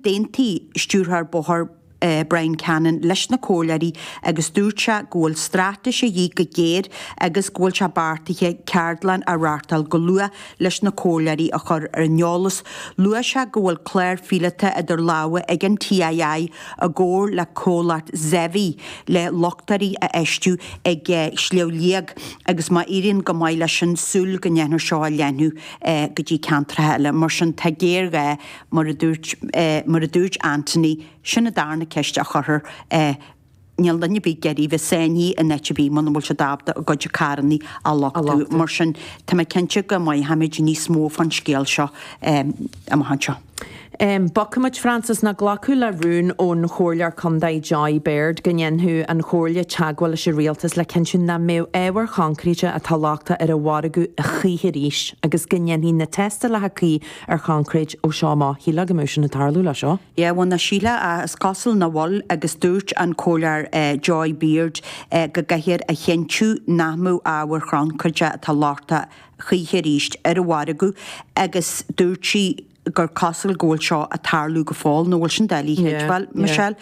D'aontaigh Stiúrthóir Bóthair Brian Cannon leis na comhairleoirí agus dúirt sé go bhfuil straitéis a dhíth go géar agus go bhfuil sé beartaithe ceardlann a reáchtáil go luath leis na comhairleoirí a chur ar an eolas. Luaigh sé go bhfuil clár phíolóta idir lámha ag an TII i gcomhar le comhlacht Zevi le luchtairí a fheistiú ag Sliabh Liag agus má éiríonn go maith leis sin súil go ndéanfar seo a leathnú go dtí ceantracha eile. Mar sin tá géarghá. mar a dúirt, mar a dúirt Anthony, sin an darna ceist a chuirtear, eh, níl duine ar bith ag iarraidh a bheith sáinnithe in áit ar bith muna bhfuil siad ábalta a gcuid carrannaí a luchtú, mar sin tá mé cinnte go mothóimid níos mó fán scéal seo, em, amach anseo. Em, bogfaimid, Francis, now glacadh le rún ón Chomhairleoir Contae Joy Beard go ndéanfadh an Chomhairle teagmháil leis an Rialtas le cinntiú nach mbeadh ábhar choincréite atá lochtach ar an mhargadh choíche arís agus go ndéanfaí na tástálacha cuí ar choincréit ó seo amach. Shílfeá go mbeadh sin ag tarlú le seo. Yeah, bhuel, nach sílfeá ach is cosúil nach bhfuil agus dúirt an Comhairleoir Joy Beard go gcaithfear a chinntiú nach mbeadh ábhair choincréite atá lochtach choíche arís ar an mhargadh agus dúirt sí gur cosúil go bhfuil seo ag tarlú go fóill, nach bhfuil sin doiligh a chreidbheáil, Michelle?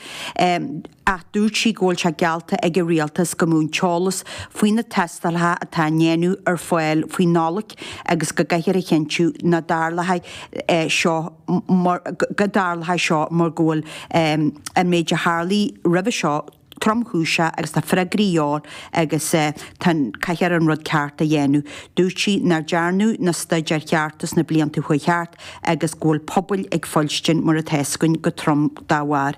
ach dúirt sí go bhfuil sé geallta ag an Rialtas go mbeadh an t-eolas faoi na tástálacha atá á ndéanamh ar fáil faoi Nollaig agus go gcaithfear a chinntiú nach dtarlóidh seo, go dtarlóidh seo mar go bhfuil an méid a tharlaigh roimhe seo tromchúiseach agus tá freagraí leor agus tá caithfear an rud ceart a dhéanamh. Dúirt sí nár dearnadh na staidéir chearta sna blianta a chuaigh thart. agus go bhfuil pobail ag fuilstin mar atá a fhios againn go trom dá bharr.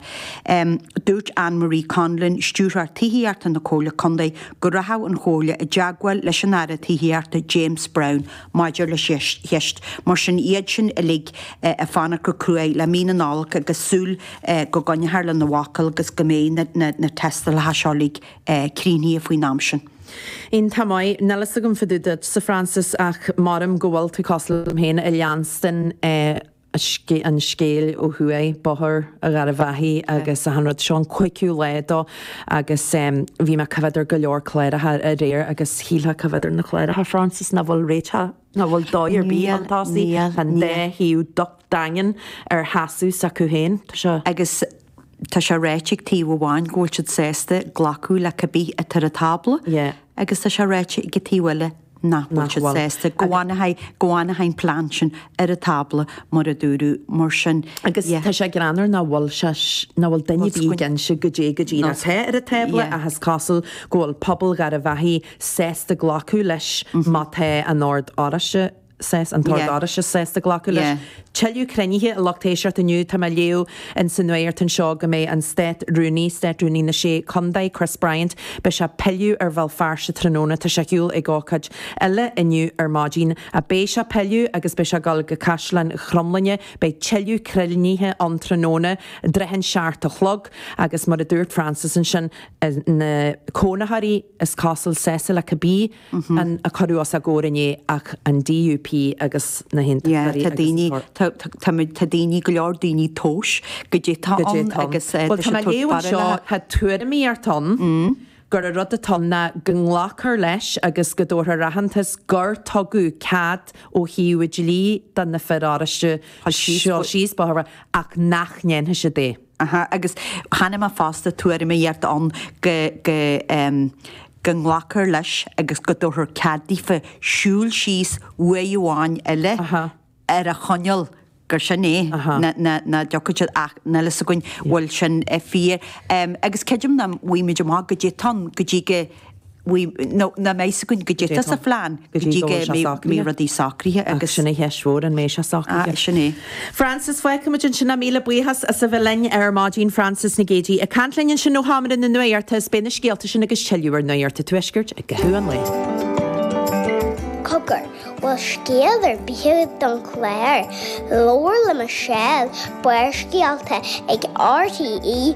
Dúirt Anne Marie Conlon, Stiúrthóir Tithíochta na Comhairle Contae, go rachadh an Chomhairle i dteagmháil leis an Aire Tithíochta James Browne maidir leis an cheist, mar sin iad sin uilig ag fanacht go cruaidh le mí na Nollag agus súil go gcoinneofar lena bhfocal agus go mbeidh na tástálacha seo uilig críochnaithe faoin am sin. Iontach maith. Níl a fhios agam fá dtaobh duitse, Francis, ach maram go bhfuil tú cosúil liom féin ag leanstan an scéil ó thuaidh, Bóthar Gharbh Achaidh agus achan rud. Seo an cuigiú lá dó agus bhí mé ag coimhead ar go leor cláracha aréir agus shílfeá ag coimhead ar na cláracha, Francis, nach bhfuil réiteach, nach bhfuil dóigh ar bith ann tá siad, an dá thaobh iontach daingean ar sheasamh s'acu féin. Tá sé. Agus tá sé ráite ag taobh amháin go bhfuil siad sásta glacadh le cibé atá ar an tábla agus tá sé ráite ag an taobh eile nach bhfuil siad sásta, go bhfanfaidh an plean sin ar an tábla, mar a dúradh. Mar sin. Agus tá sé greannmhar nach bhfuil sé, nach bhfuil duine ar bith ag inse cad é go díreach atá ar an tábla ach is cosúil go bhfuil pobal Gharbh Achaidh sásta glacadh leis má tá an Ord Oráisteach, saghas an tOrd Oráisteach sásta glacadh leis. Tuilleadh cruinnithe a lucht éisteachta inniu. Tá mé ag léamh ins an nuaíocht anseo go mbeidh an Státrúnaí, Státrúnaí na Sé Condae, Chris Bryant, beidh sé ag pilleadh ar Bhéal Feirste tráthnóna. Tá sé ar shiúl ag ócáid eile inniu ar maidín. Ach beidh sé ag pilleadh agus beidh sé ag gul go Caisleán Chromghlinne. Beidh tuilleadh cruinnithe ann tráthnóna. I dtrátha an seacht a chlog agus mar a dúirt Frances ansin, na cónaitheoirí is cosúil, sásta le cibé. a cuireadh os a gcomhair inné ach an DUP agus na hAontachtóirí agus an tOrd. Tá daoine, go leor daoine ag tomhas caidé atá ann agus tá sé ag tabhairt barúil. Bhuel tá mé ag léamh anseo, tá tuairimíocht ann gur an rud atá ann ná go nglacfar leis agus go dtabharfar aitheantas gur tugadh cead ó thaobh dlí do na fir Oráisteacha siúl síos an bóthar, ach nach ndéanfaidh siad é. Aha, agus chonaic mé fosta tuairimíocht ann go, go, em, go nglacfar leis agus go dtabharfar cead daofa siúl síos uair amháin eile Aha. ar an choinníoll gur sin é, Aha. ná, ná, nach dtiocfaidh siad ach, níl a fhios againn bhfuil sin fíor. Em, agus creidim nach bhfaighidh muid amach caidé atá ann, go dtí go. nach mbeidh a fhios againn caidé atá sa phlean go dtí go mbeidh rudaí socraithe agus. Ach sin an cheist mhór, an mbeidh sé socraithe? Sin é. Frances, Feicfimid ansin ach míle buíochas as a bheith linn ar maidin. Frances Nic Géadaigh ag caint linn ansin ó Sheomra na Nuaíochta is beidh na scéalta sin agus tuilleadh ar Nuaíocht an Tuaiscirt i gcaitheamh an lae. Cogar, bhfuil scéal ar bith don chlár? Labhair le Michelle, Barrscéalta ag RTE.ie.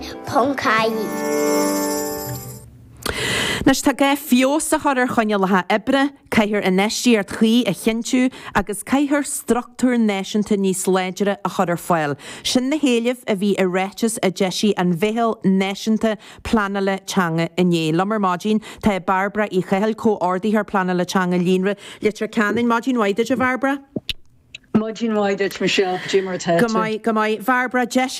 Anois tá gá feabhas a chur ar choinníollacha oibre, caithfear infheistíocht chuí a chinntiú agus caithfear structúr náisiúnta níos láidre a chur ar fáil. Sin na héilimh a bhí i ráiteas a d'eisigh an Mheitheal Náisiúnta Pleanála Teanga inné. Liom ar maidin tá Bairbre Uí Chathail, Comhordaitheoir Pleanála Teanga Líonra Leitir Ceanainn. Maidin mhaith duit a Bhairbre. Maidin mhaith duit Michelle, caidé mar atá tú. Go maith, go maith. A Bhairbre, d'eis.